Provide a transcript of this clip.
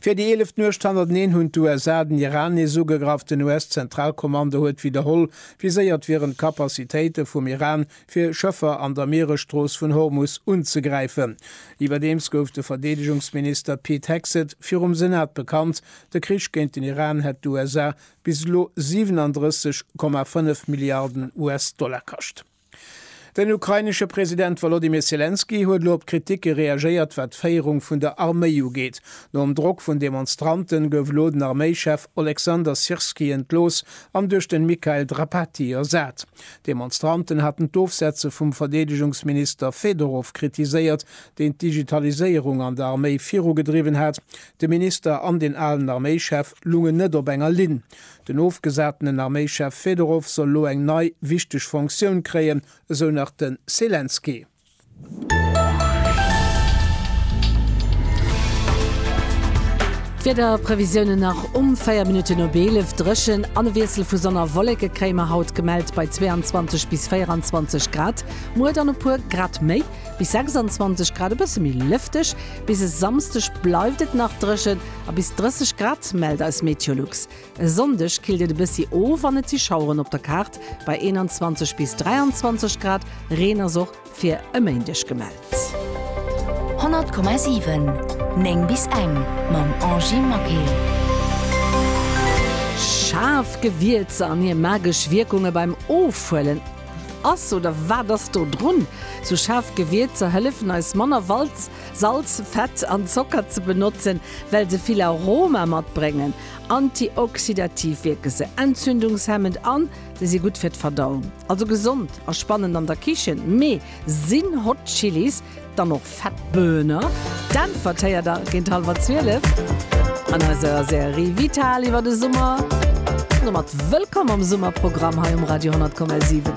Fir déi eeleft Nuecht hannerteneen hunn d'USA den Iran nees ugegraff. Den US-Zentralkommando huet widderholl viséiert, wieren d'Kapazitéite vum Iran, fir Schëffer an der Mieresstrooss vun Hormus unzegräifen. Iwwerdeems gouf de Verdeedegungsminister Pete Hegseth virum Senat bekannt, de Krich géint den Iran hätt d'USA bis elo 37,5 Milliarden US-Dollar kascht. Den ukrainesche President Wolodymyr Selenskyj huet elo op d'Kriticke reagéiert, wat d'Féierung vun der Arméi ugeet. Nom Drock vun Demonstranten gouf elo den Arméichef Oleksandr Syrskyi entlooss an duerch den Mikhail Drapatyi ersat. D'Demonstranten haten d'Ofsetze vum Verdeedegungsminister Fedorov kritiséiert, deen d'Digitaliséierung an der Arméi virugedriwwen hat. De Minister an den alen Arméichef lungen net op enger Linn. Den ofgesatenen Arméichef Fedorow soll elo eng nei, wichteg Fonctioun kréien, esou nach de Selenskyj. D'Wiederprevisiounen nach um 4 Minutten op 11, Dréchen an e Wiessel vu Sonn a Wolleke kréie mer haut, gemellt bei 22 bis 24 Grad. Muer dann e puer Grad méi, bis 26 Grad, e bësse méi lëfteg. Bis e Samsdeg bleift et nach dréchen. A bis 30 Grad mellt eis Meteolux. E Sonndeg killt et e bëssi of an et si Schaueren op der Kaart bei 21 bis 23 Grad. Reen ass och fir e Méindeg gemellt. 100,7 9 bis eng mam Angy Maquet. Schaarf Gewierzer an hir magesch Wierkunge beim Ofhuelen, Ass oder wat ass do drun? Sou schaarf Gewierzer hëllefen eis manner Walz Salz, Fett an Zocker ze benotzen, well se vill Aroma matbréngen. Antioxidativ wierke se, entzündungshemmend a se si gutt fir d'Verdauung. Also gesond a spannend an der Kichen. Mee sinn Hot Chilis dann och fett? Böhner? D'Äntwert héiert der géint hallwer 12 an eiser Serie Vital iwwer de Summer. Domat wëllkomm am Summerprogramm hei um Radio 10,7.